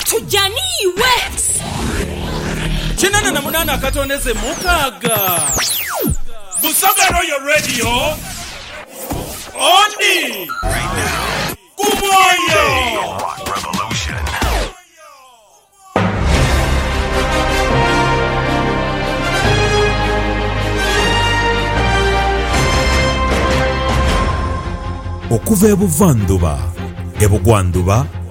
Tuja ni iwe. Kinana na munana akatondeze mukaga. Busoga Royal Radio odi ku mwoyo. Rock Revolution. Okuva e buvandhuba, e bugwandhuba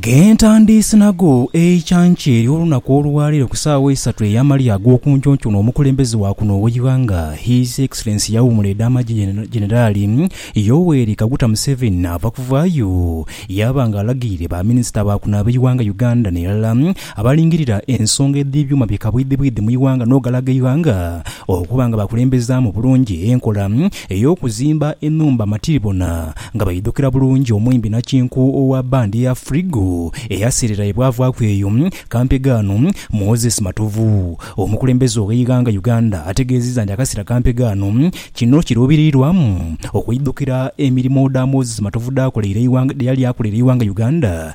Ghe ntandiise nago eicanca eryo olunaku olwaleero ku saawa isatu eyamalya agokunkyonkyona omukulembeze wa kuno ogheighanga His Excellency Yawummula edamagye Generali Yoweri Kaguta Museveni naava kuvaayo yaaba nga alagirire ba Minisita ba kuno abeighanga Uganda nerala abalingirira ensonga edhebyuuma bye kabwidhibwidhi mu ighanga nogalaga eighanga okuba nga bakulembezaamu bulungi enkola ey'okuzimba enhumba matiribona nga baidhukira bulungi omwimbi nakinku owa bbandi ya Frigo eyaseerera ye bwavaaku eyo kampe ghano. Moses Matovu, omukulembeze ow'eighanga Uganda ategeezizza nti akaseera kampe ghano kino kiruubiriirwamu okweidhukira emirimo dha Moses Matovu dh'akoleire eighanga dheyali akoleire eighanga Uganda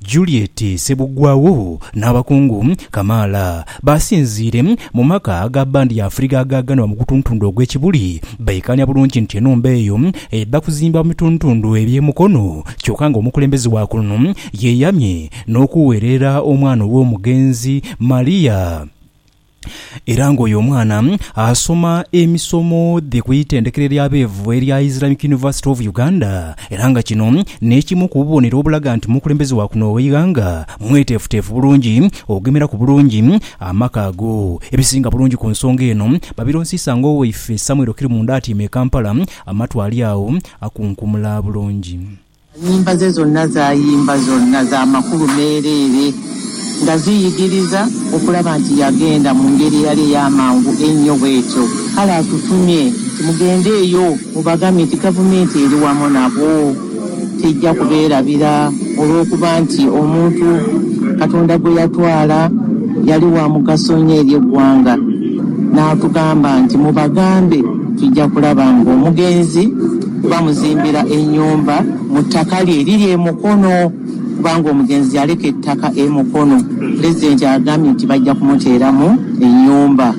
Juliet Sebugwawo n'abakungu kamaala baasinziire mu maka ga bbandi ya Afriga agaaganibwa mu gutuntundu ogw'e Kibuli. Baikaanya bulungi nti enhumba eyo eidha kuzimbibwa mu bituntundu eby'e Mukono kyoka nga omukulembeze wa kuno yeeyamye n'okuweerera omwana ow'omugenzi Maria. era ng'oyo omwana asoma emisomo dhe ku itendekero ery'abeevu erya Islamic University of Uganda era nga kino n'ekimu ku bubonero obulaga nti omukulembeze wa kuno gh'eighanga mweteefuteefu bulungi okugemeraku bulungi amaka ago. Ebisinga bulungi ku nsonga eno babironsiisa ng'owaife Samuel Kirumunda atyaime e Kampala amatu ali agho akunkumula bulungi. Ennyimba ze zonna z'ayimba zonna za makulu meereere, nga ziyigiriza okulaba nti yagenda mu ngeri eyali ey'amangu einho bw'etyo. Kale atutumye nti, Mugendeeyo mubagambe nti Gavumenti eri wamu nabo, teija kubeerabira, olw'okuba nti omuntu Katonda gwe yatwala yali wa mugaso inho eri eggwanga. N'atugamba nti, Mubagambe, tuija kulaba ng'omugenzi. Baamuzimbira ennyumba mu ttaka lye eriri e Mukono kubanga omugenzi yaleka ettaka e Mukono. Pulezidenti agambye nti bajja kumuteeramu ennyumba.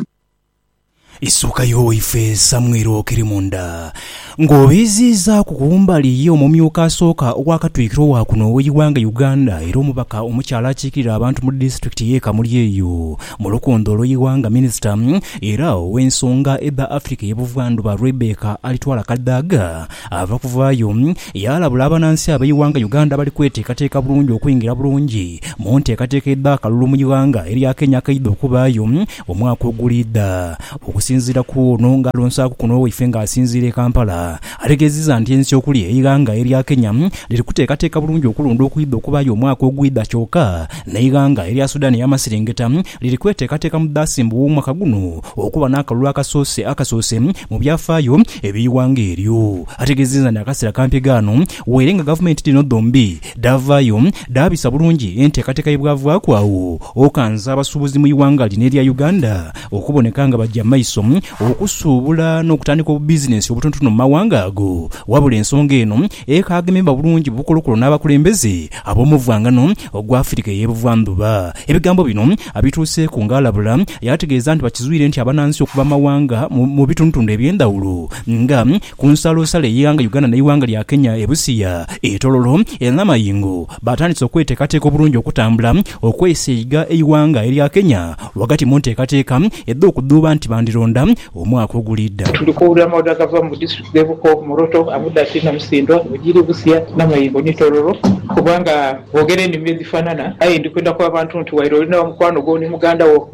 Isuuka yo waife Samuel Okirimunda nga obiiziizaaku kumbali ye omumyuka asooka owa katwikiro wa kuno oweighanga Uganda era omubaka omukyala akiikirira abantu mu disitulikiti ye Kamuli eyo Mu lukundo olwo Iwanga Minisita era ow'ensonga edha Africa ye Buvandhuba Rebecca Alitwala Kadaga ava kuvaayo yaalabula abanansi ab'eiwanga Uganda abali kweteekateeka bulungi okwingira bulungi mu nteekateeka edh'akalulu mu iwanga erya Kenya akaidha okubaayo omwaka oguliidha. Okusinziira ku ono nga alonsaaku kuno waife nga asinziira e Kampala, Ategeezezza nti ensi okuli eighanga erya Kenya liri kuteekateeka bulungi okulonda okwidha okubaayo omwaka ogwidha kyoka n'eighanga erya Sudan ey'amaserengeta liri kweteekateeka mu Daasemba ow'omwaka guno okuba n'akalulu akasoose akasoose mu byafaayo eby'eighanga eryo. Ategeezezza nti akaseera kampi ghaano weere nga gavumenti dhino dhombi dhaavaayo dhaabisa bulungi enteekateeka ye bwavaaku agho okanza abasuubuzi mu ighanga lino erya Uganda okuboneka nga baja maiso okusuubula n'okutandika obubizinensi obutonotono mu mawanga ago. Wabula ensonga eno ekaagemebwa bulungi bukolokolo n'abakulembeze ab'omuvwangano ogw'Afirika ey'ebuvandhuba. Ebigambo bino abituuseeku ng'alabula yaategeeza nti bakizwire nti abanansi okuva mu mawanga mu bitundutundu eby'endhawulo nga ku nsalosalo ey'eighanga Uganda n'eighanga lya Kenya e Busia, e Tororo e Namayingo, baatandise okweteekateeka obulungi okutambula okweisa eiga eighanga erya Kenya ghagati mu nteekateeka edh'okudhuuba nti bandironda omwaka oguliidha. Tuli kuwulira amaadhi agava mu district dhe Buko, Moroto, Abudaki, Namusindwa, Bugiri, Busia, Namayingo ni Tororo kubanga boogera enimi edhifanana aye ndi kwenda ku abantu nti waire oli na mukwano gwo ni muganda wo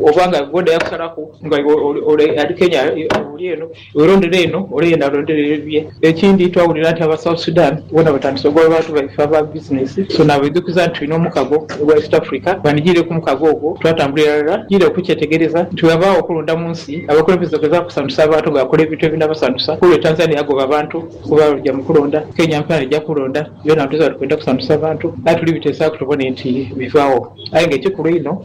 oba nga gwe odayo kusalaku nga iwe oli Kenya oli eno, Werondere eno ole yena arondere ebibye. Ekindi twawulira nti aba South Sudan bona batandise ogoba abantu baife aba business so nabaidhukiza nti tulina omukago ogwa East Africa banigirire kumukago ogwo twatambula iralala tugiire kukyetegereza nti wewabaagho okulonda munsi abakulembeze ogezaku kusanhusa abantu nga bakola ebintu ebinabasanhusa olwo Tanzania yagoba abantu kuba baja mukulonda Kenya mpela neja kulonda byona nituziba nti kwenda kusanhusa abantu aye tulibitesaku tubone nti bivaagho aye nga ekikulu einho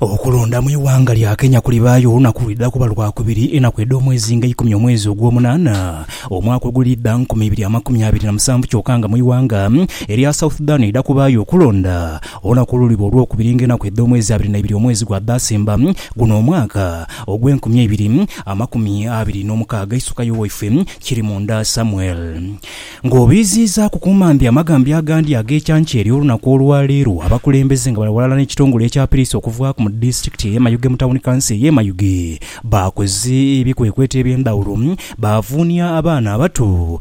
Okulonda mu ighanga lya Kenya kulibaayo olunaku lwidha kuba Lwakubiri enaku edh'omwezi nga eikumi omwezi ogwomunaana omwaka ogulidha nkumi ibiri amakumi abiri na musanvu kyoka nga mu ighanga erya South Sudan eidha kubaayo okulonda olunaku oluliba Olwokubiri nga enaku edh'omwezi abiri naibiri omwezi gwa Daasemba guno omwaka ogw'enkumi eibiri amakumi abiri n'omukaaga Isukayo waifwe Kirimunda Samuel. Ng'obiiziizaaku ku mambi amagambi agandi ag'ekyancha eri olunaku olwa leero, abakulembeze nga bali ghalala n'ekitongole ekya Piriisi okuvaaku mu disitulikiti ey'e Mayuge mu tawuni kanso ey'e Mayuge baakoze ebikwekweto eby'endhawulo baavuunia abaana abato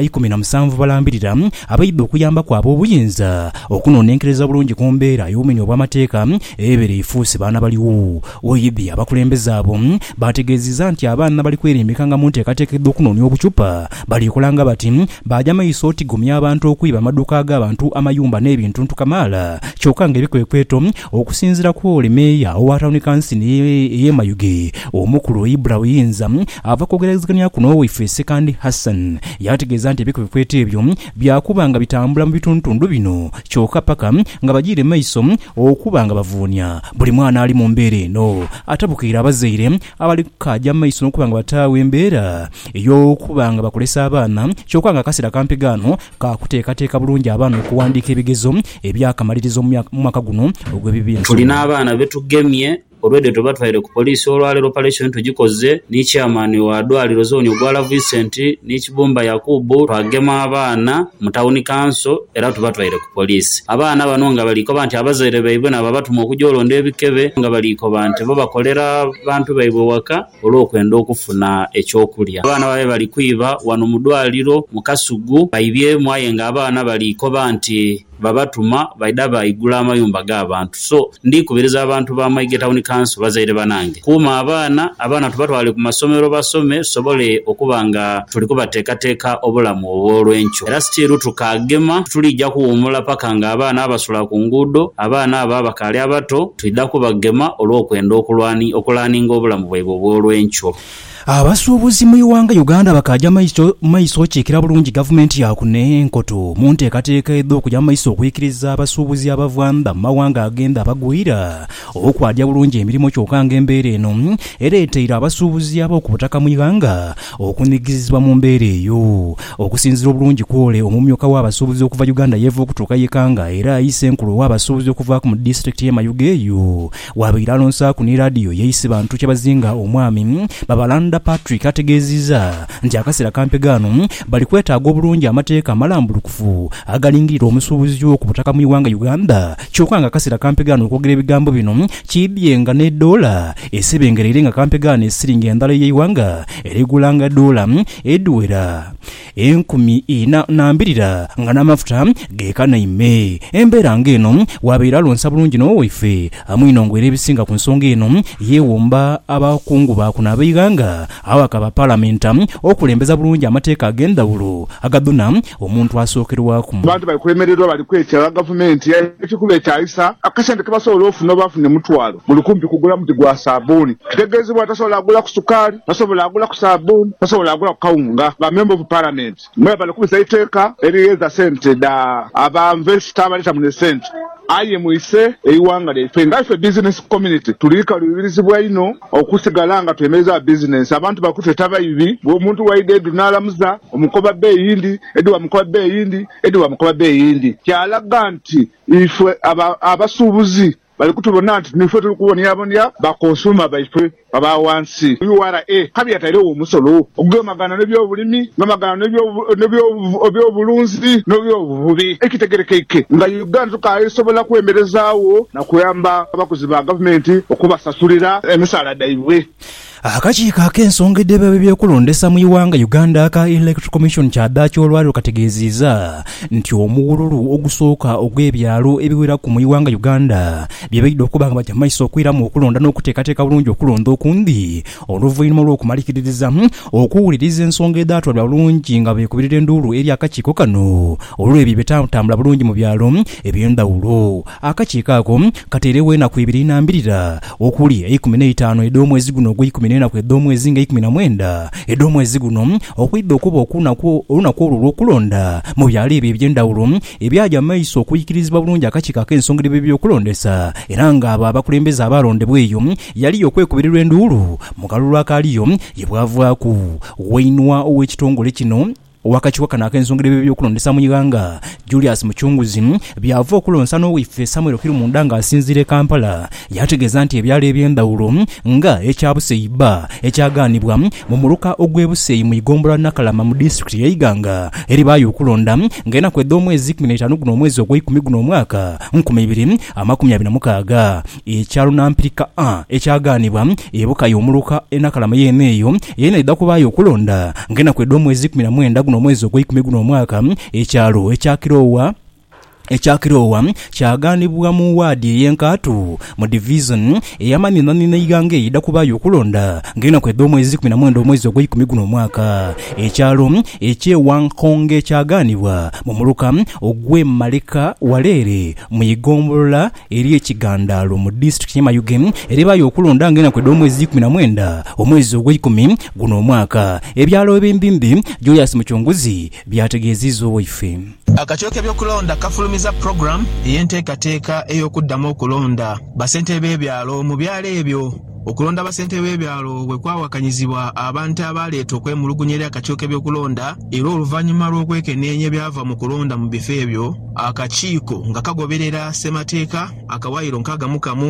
ikumi na musanvu balambirira abaidha okuyambaku ab'obuyinza okunonenkereza bulungi ku mbeera y'obumenyi obw'amateeka ebeera efuuse baana baligho oidhi. Abakulembeze abo baategeezizza nti abaana bali kwerimbika nga mu nteekateeka edh'okunoonia obucupa Baliikolanga bati, baaja maiso otigomya abantu, okwiba amaduuka ag'abantu, amayumba n'ebintuntu kamaala. Kyoka nga ebikwekweto, okusinziira ku ole meeya owa tawuni kansini ey'e Mayuge, Omukulu Ibra Buyinza, ava kwogeragazigania kuno waife Ssekandi Hassan yaategeeza nti ebikwekweto ebyo byakuba nga bitambula mu bituntundu bino kyoka paka nga bajiire maiso okuba nga bavuunia buli mwana ali mu mbeera eno atabukaire abazaire abali kaaja maiso n'okuba nga bataagho embeera Ey'okuba nga bakulesa abaana kyoka nga akasera kampi ghano ka kuteekateeka bulungi abaana okuwandiika ebigezo eby'akamalirizo mu mwaka guno ogw'ebibiinsomo. Tulina abaana be tugemye olw'edho twe batwaire ku poliisi olwaleero opareshoni tugikoze ni Chairman wa dwaliro zooni Ogwala Vincent ni Kibumba Yakubu twagema abaana mu Tawuni Kanso era tubatwaire ku poliisi. Abaana bano nga bali koba nti abazaire baibwe n'ababatuma okugya olonda ebikebe nga bali koba nti bo bakolera bantu baibwe waka. olw'okwenda okufuna eky'okulya. Abaana babaire bali kwiba ghano mu dwaaliro mu Kasugu baibyemu aye nga abaana bali koba nti babatuma baidha baigula amayumba g'abantu. So ndi kubiriza abantu ba Maighe Town Council, bazaire banange kuuma abaana, abaana tubatwale ku masomero basome tusobole okuba nga tuli kubateekateeka obulamu obw'olwenkyo. Era still tukaagema, tituliija kuwuumula paka nga abaana abasula ku nguudo, abaana abo abakaali abato, Twidha kubagema olw'okwenda okulaaninga obulamu bwaibwe obw'olwenkyo. Abasuubuzi mu ighanga Uganda bakaaja maiso maiso okiikira bulungi gavumenti ya kuno enkoto mu nteekateeka edh'okuja mu maiso okwikiriza abasuubuzi abava ndha mu mawanga agendha abagwira okwaaja bulungi emirimo kyoka nga embeera eno ereeteire abasuubuzi ab'okubutaka mu ighanga Okunigizibwa mu mbeera eyo. Okusinzira obulungi kwole, omumyuka w'abasuubuzi okuva Uganda yeeva okutuuka ye Kanga era ayi ssenkulu ow'abasuubuzi okuvaaku mu disitulikiti y'e Mayuge eyo waabaire alonsaaku ni laadiyo ye Isibantu Kyabazinga omwami Babalanda Patrick ategeeziiza nti akaseera kampega ano bali kwetaaga obulungi amateeka amalambulukufu agalingirira omusuubuzi w'oku butaka mu iwanga Uganda Kyoka nga akasera kampegaane okwogera ebigambo bino, kiidhie nga n'edoola esebengereire nga kampegaane esiringi endhala ey'eighanga erigulanga doola edhiwera enkumi ina na mbirira nga n'amafuta geekanaime. Embeera nga eno waabaire alonsa bulungi n'owe waife Amuinongo era ebisinga ku nsonga eno yeewomba abakungu baakuno ab'eighanga Agho akaba Palamenti okulembeza bulungi amateeka ag'endhawulo agadhuna omuntu asookerwaku. Abantu bali kwemererwa bali kwetaaga Gavumenti ebaite kubeetaayisa akasente ke basobola ofuna oba afune mutwalo buli kumpi kugula muti gwa saabbuuni. Tutegeezebwa nti tasobola gulaku sukaali, tasobola gulaku saabbuuni, tasobola gulaku kawunga nga Member of Parliament. Mwebale okubisa eiteeka erigheeza sente dha aba investor abaleeta muno esente aye mwise eighanga lyaife. Nga ife business community tuli kaluubirizibwa inho okusigala nga twemerezaagho business. Abantu bali kutweta baibi bw'omuntu bwaidha edhu n'alamuza omukoba bee eyindi, edhu baamukoba bee eyindi, edhu baamukoba bee eyindi. Kyalaga nti ife aba abasuubuzi Bali kutubona nti nife tuli kubonyabonya bakonsuuma baife aba wansi. Ura kabi yatairegho omusolo ogugemaghana n'ebyobulimi, ogugemaghana n'ebyobulunzi n'ebyobuvubi. Ekitegerekeike nga Uganda tukaasobola kwemerezaagho na kuyamba abakozi ba gavumenti okubasasulira emisaala dhaibwe. Akakiiko ak'ensonga edheba eby'okulondesa mu ighanga Uganda aka Elect Commission kyadhaaki olwaleero kategeeziiza nti omughululu ogusooka ogw'ebyalo ebiweraku mu ighanga Uganda byebaidha okuba nga bagya maiso okwiramu okulonda n'okuteekateeka bulungi okulonda okundi oluvainhuma olw'okumalikiririzamu okuwuliriza ensonga edhatwalibwa bulungi nga beekubirira enduulu eri akakiiko kano olw'ebyo ebitantambula bulungi mu byalo eby'endhawulo. Akakiiko ako kateiregho enaku ibiri inambirira okuli eikumi n'eitaanu edh'omwezi guno ogweikumi n'enaku edh'omwezi nga eikumi na mwenda edh'omwezi guno, okwidha okuba okunaku olunaku olwo olw'okulonda mu byalo ebyo eby'endhawulo ebyaja mu maiso okuikirizibwa bulungi akakiiko ak'ensonga edh'eby'okulondesa era nga abo abakulembeze abaalondebwa eyo yali y'okwekubirirwa enduulu mu kalulu akaaliyo ye bwavaaku wainwa ow'ekitongole kino Ow'akakiiko kano ak'ensonga edh'eby'okulondesa mu ighanga, Julius Muchunguzi, by'ava okulonsa n'owaife Samuel Kirumunda nga asinziira e Kampala, yaategeeza nti ebyalo eby'endhawulo nga ekya Buseyi bba ekyagaanibwa mu muluka ogw'e Buseyi mu ighombolola Nakalama mu disitulikiti y'e Iganga eribaayo okulonda nga enaku edh'omwezi ikumi n'eitaanu guno omwezi ogweikumi guno omwaka nkumi ibiri amakumi abiri na mukaaga. Ekya lunampirika A ekyagaanibwa, ebuka y'omuluka enakalama yeene eyo yeena eidha kubaayo okulonda ng'enaku edh'omwezi ikumi na mwenda guno omwezi ogweikumi guno omwaka. Ekyalo ekya Kiroowa ekya Kiroowa kyagaanibwa mu waadi ey'enkaatu mu Divisoni ey'amanhinaanhina eighanga eyo eidha kubaayo okulonda ng'enaku edh'omwezi ikumi na mwenda omwezi ogweikumi guno omwaka. Ekyalo eky'e Wankonge kyagaanibwa mu muluka ogw'e Maleka wala ere mu igombolola Eriyo ekigandaalo mu disitulikiti ye Mayuge erebaayo okulonda nga enaku edh'omwezi ikumi na mwenda omwezi ogweikumi guno omwaka, ebyalo Ebimbimbi, Joyous Muchunguzi byategeeziiza owaife. Akakiiko k'ebyokulonda kafulumiza pulogulaamu ey'enteekateeka ey'okuddamu okulonda bassentebe b'ebyalo mu byalo ebyo. Okulonda abasentebe b'ebyalo bwe kwawakanyizibwa, abantu abaaleeta okwemulugunya eri akakiiko k'ebyokulonda era oluvannyuma lw'okwekeneenya ebyava mu kulonda mu bifo ebyo, akakiiko nga kagoberera Ssemateeka akawaayiro nkaaga mu kamu,